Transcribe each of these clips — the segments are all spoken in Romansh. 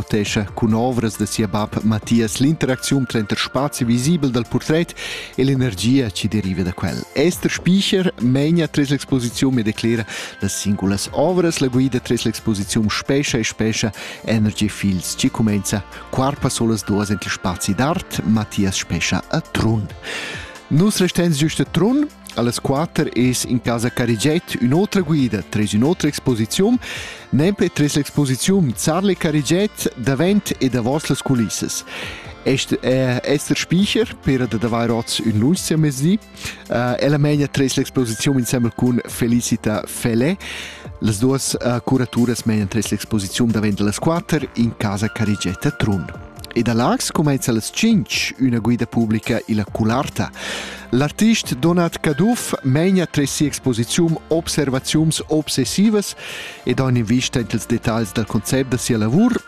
notescha cun ovras da sia bab Mathias l'interacziun tranter spazi visibel dal portret e l'energia che deriva da quel. Esther Spicher menia tres l'exposiziun e declera las singulas ovras la guida tres l'exposiziun spescha e spescha Energy Fields ci comenza quarpa solas duas entre spazi d'art Mathias spescha a Trun. Nus restens giusto a Trun Allas quater es in casa Carigiet ün'otra guida tras ün'otra exposiziun, nempe tras l'exposiziun Zarle Carigiet davent e davos las culissas. Est è Esther Spiecher, per da davair oz ün lunch mezdi. Uh, ella megna tres l'exposiziun insembel cun Felicita Fele. Las duas uh, curaturas megnan tres l'exposiziun davent las quater in casa Carigetta Trun. E da Laax cumainza las tschinch üna guida publica illa Cularta. L'artist Donat Caduff meina tres sia exposiziun observaziuns obsessivas ed ha invista in ils detagls dal concept da sia lavur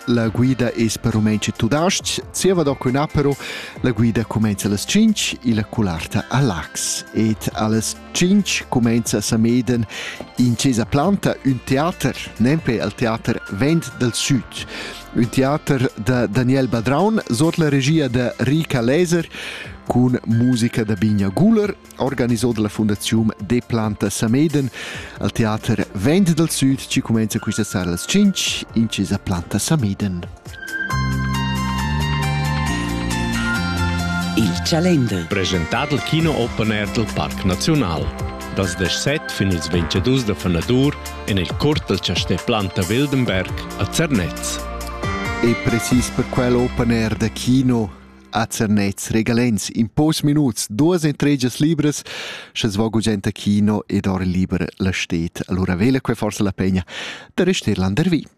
la guida es per rumensci tudasc, zieva doc ün apero, la guida cumenza las 5 illa cularta a Lax ed alles Tschintg cumenza Sameden in chesa planta, ün teater, nempe al teater Vent del Süd. Ün teater da Daniel Badraun sot la regia da Rika Leser cun musica da Binja Guler, organisò dalla Fundaziun De Planta Sameden al teater Vent del Süd ci cumenza quista sera als 5 in chesa Planta Sameden. Il Chalender. Presentà dal Kino Open Air dal Parc Naziunal. Dals 17 fin ils 22 da fanadur en il curt dal chastè Planta Wildenberg a Zernez. E precis per quel Open Air da Kino a Zernez regalens in pos minuts duas entregas libras sche svo gugent a kino ed or liber la stet allora vela que forse la pegna da rester landervi